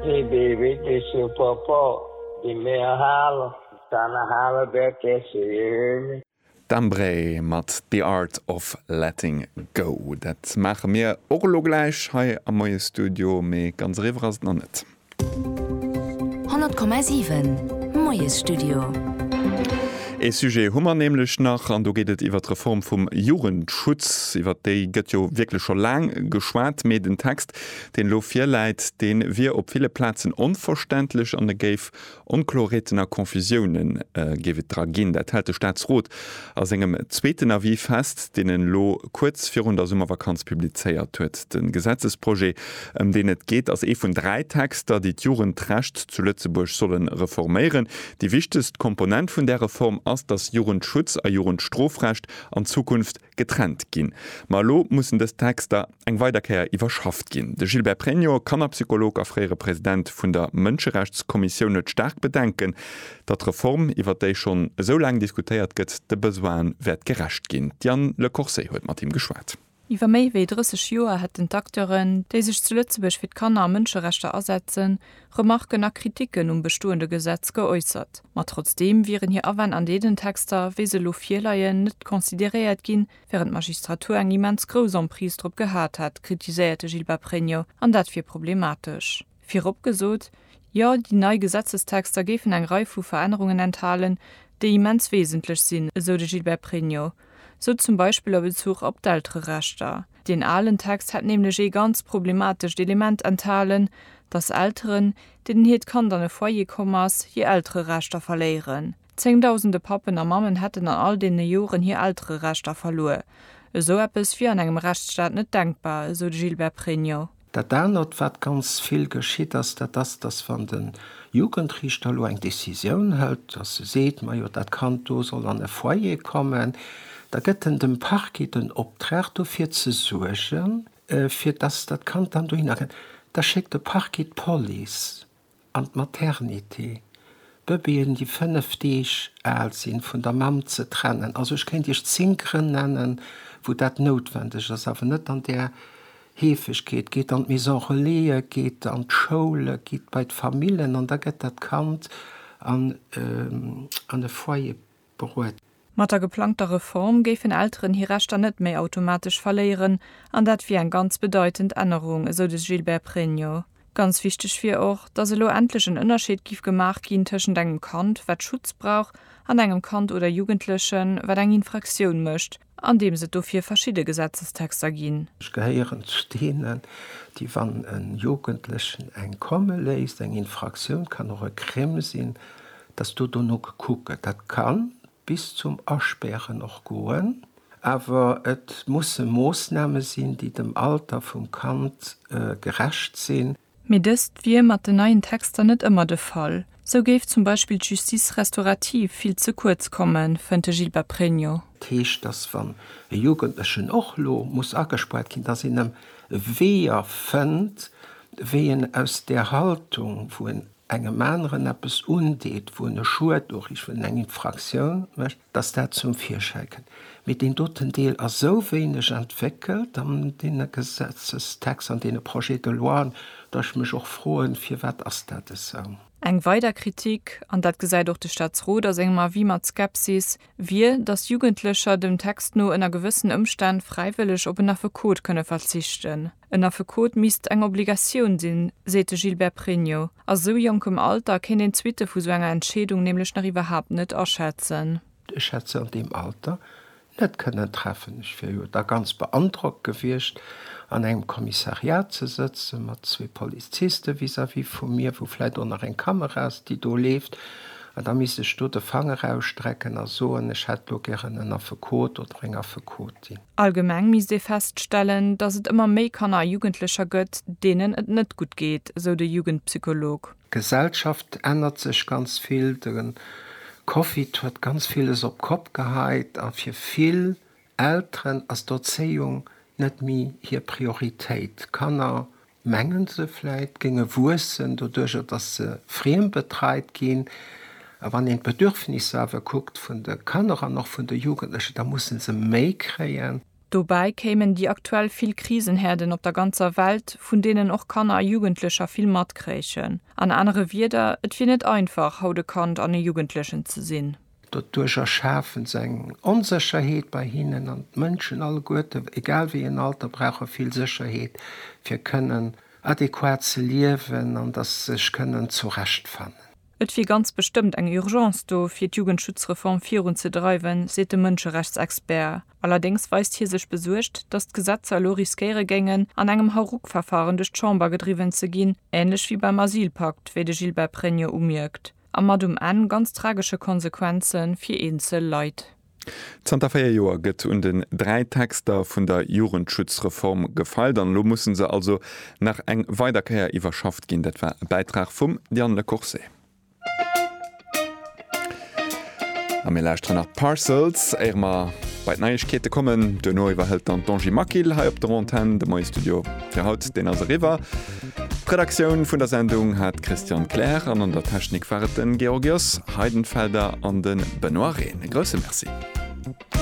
Hee dee wierkleche Papa, dee mär halen, dann hale mär d'Äschen. D'Embree mat The Art of Letting Go. Dat maache mir och elo gläich hei am Moie Studio, mee ganz eriwwer ass et nach net. 100,7 Moie Studio. Ee Sujet hu mer nämlech nach, an do geet et iwwer d'Reform vum Jugendschutz. Iwwer déi gëtt jo wierklech scho laang geschwat, mee den Text, deen elo virläit, dee wier op ville Plazen onverständlech an e géif Onkloreeten a Confusioune géif et dra ginn. Dat hält de Staatsrot a sengem zweeten Avis fest, deen en elo kuerz virun der Summervakanz publizéiert huet. De Gesetzesprojet, ëm deen et geet, ass ee vun dräi Texter, déi d'Jugendrecht zu Lëtzebuerg solle reforméieren. Déi wichtegst Komponent vun där Reform ass, datt Jugendschutz a Jugendstrofrecht an Zukunft getrennt ginn. Ma elo mussen dës Texter eng weider Kéier iwwerschafft ginn. De Gilbert Pregno, Kannerpsycholog a fréiere President vun der Mënscherechtskommissioun, huet staark Bedenken, datt d'Reform, iwwer déi schonn esou laang diskutéiert gëtt, de Besoine wäert gerecht ginn. D'Diane Le Corset huet mat him geschwat. Iwwer méi wéi 30 Joer hätten d'Acteuren, déi sech zu Lëtzebuerg fir d'Kanner a Mënscherechter asetzen, Remarken a Kritiken um bestoende Gesetz geäussert. Ma trotzdeem wieren hir Awänn an deenen Texter, wéi se elo virleien, net consideréiert ginn, wärend d'Magistratur eng immens grouss Emprise drop gehat hätt, kritiséiert de Gilbert Pregno, an dat wier problematesch. Virop gesot, Jo, déi nei Gesetzestexter géifen eng Rei vu Verännerungen enthalen, déi immens wesentlech sinn, esou de Gilbert Pregno, sou zum Beispill a Bezuch op d'Eltererechter. Deen alen Text hätt nämlech ee ganz problematescht Element enthalen, datt Elteren, deenen hiert Kand an e Foyer komm ass, hir Eltererechter verléieren. Zéngdausende Pappen a Mammen hätten an all deene Joren hir Eltererechter verluer. Esou eppes wier an engem Rechtsstaat net denkbar, esou de Gilbert Pregno. Dat anert, wat ganz vill geschitt ass, dat ass, dass wann de Jugendriichter elo eng Décisioun hëlt, dass e seet, majo dat Kand do soll an e Foyer kommen, da gëtt en dem Parquet den Optrag dofir ze suergen, fir dass dat Kand dann dohinner kënnt. Da schéckt de Parquet d'Police. An d'Maternité, d'Bëbeeën, déi 5 Deeg al sinn, vun der Mamm ze trennen. Also ech kéint Iech 10 Grënn nennen, wou dat noutwendeg ass, awer net an där Heefegkeet. Geet an d'Maison Relaisë, geet an d'Schoule, gitt bei d'Famillen an da gëtt dat Kand an e Foyer beruet. Mat der geplangter Reform géifen Elteren hir Rechter net méi automatesch verléieren an dat wier eng ganz bedeitend Ännerung, esou de Gilbert Pregno. Ganz wichteg wier och, datt elo endlech en Ënnerscheed giff gemaach ginn tëschent engem Kand, wat Schutz brauch, an engem Kand oder Jugendlechen, wat eng Infraktioun mécht, Andeems et dofir verschidde Gesetzestexter ginn. Ech gehéieren zu deenen, déi, wann e Jugendlechen eng komme léisst, eng Infraktioun kann och e Crime sinn, dass do dono gekuckt gëtt. Dat ka bis zum Aspären och goen. Awer et musse Moossname sinn, déi dem Alter vum Kand gerecht sinn. Mee dëst wier mat den neien Texter net ëmmer de Fall. Sou géif zum Beispill d'Justice restaurative vill ze kuerz kommen, fënnt de Gilbert Pregno. Dat heescht, datt wann e Jugendlechen och lo muss agespuert ginn, datt een em Weeër fënnt, wéi en aus där Haltung, wou en engem aneren eppes undeet, wou en e Schued uriicht, wou en eng Infraktioun mécht, Dass dat zum Virschäi kënnt. Mee deen doten Deel ass esou wéineg entwéckelt an deene Gesetzestexter, an deene Projets de loien, datt ech mech och froen, Firwat ass dat esou? Eng weider Kritik, an dat gesäit och de Staatsrot a sengem Avis mat Skepsis, wier, datt Jugendlecher dem Text no ënner gewëssen Ëmstänn fräiwëlleg op en Affekot kënne verzichten. En Affekot misst eng Obligatioun sinn, seet de Gilbert Pregno. A sou jonkem Alter kéint een d'Suitte vu sou enger Entscheedung nämlech nach iwwerhaapt net aschätzen. Ech hätt se an deem Alter net kënnen treffen. Ech wier jo da ganz beandrockt gewiescht, an engem Kommissariat ze sëtzen, mat zwee Poliziste vis-à-vis vu mir, wou vläit och nach eng Kamera ass, déi do leeft, an da misst ech do de Fanger ausstrecken a soen, ech hätt elo gären en Affekot oder eng Affekotin. Allgemeng misst ee feststellen, datt et ëmmer méi Kanner a Jugendlecher gëtt, deenen et net gutt geet, sou de Jugendpsycholog. D'Gesellschaft ännert sech ganz vill. De Covid huet ganz villes op d'Kopp geheit a fir vill Elteren ass d'Erzéiung net méi hir Prioritéit. D'Kanner mengen se vläit, géinge wuessen, doduerjer datt se friembetreit ginn. A wann een d'Bedürfnisser awer kuckt vun de Kanner an och vun de Jugendlechen, da musse se méi kréien. Dobäi kéimen déi aktuell vill Krisenherden op der ganzer Welt, vun deenen och Kanner a Jugendlecher vill matkréichen. An anere Wieder, et wier net einfach, haut e Kand an e Jugendlechen ze sinn. Doduerch erschafen se eng Onsécherheet bei hinnen an d'Mënschen alleguerten, egal wéi en Alter, brauche vill Sécherheet, fir kënnen adequat ze liewen an datt se sech kënnen zurechtfannen. Et wier ganz bestëmmt eng Urgence do, fir d'Jugendschutzreform virun ze dreiwen, seet de Mënscherechtsexpert. Allerdéngs weist hie sech besuergt, datt d'Gesetzer elo riskéiere géingen, an engem Hauruck-Verfaren duerch d'Chamber gedriwwen ze ginn, änlech wéi beim Asylpakt, wéi de Gilbert Pregno umierkt. A mat um Enn ganz tragesche Konsequenze fir eenzel Leit. Zanter véier Joer gëtt un den dräi Texter vun der Jugendschutzreform gefeilt an elo musse se also nach eng weider Kéier iwwerschafft ginn. Dat war e Bäitrag vum Yann Le Corset. A mir lauschteren nach d'Parcels, éier mer bei d'Neiegkeete kommen. Duerno iwwerhëlt dann d'Angie Maquil hei op der Antenn de Moie-Studio. Fir haut, deen ass eriwwer. D'Redaktioun vun der Sendung hat d'Christiane Kleer an an der Technik war et de Georgios Heidenfelder an de Benoît Rehn. E grousse Merci.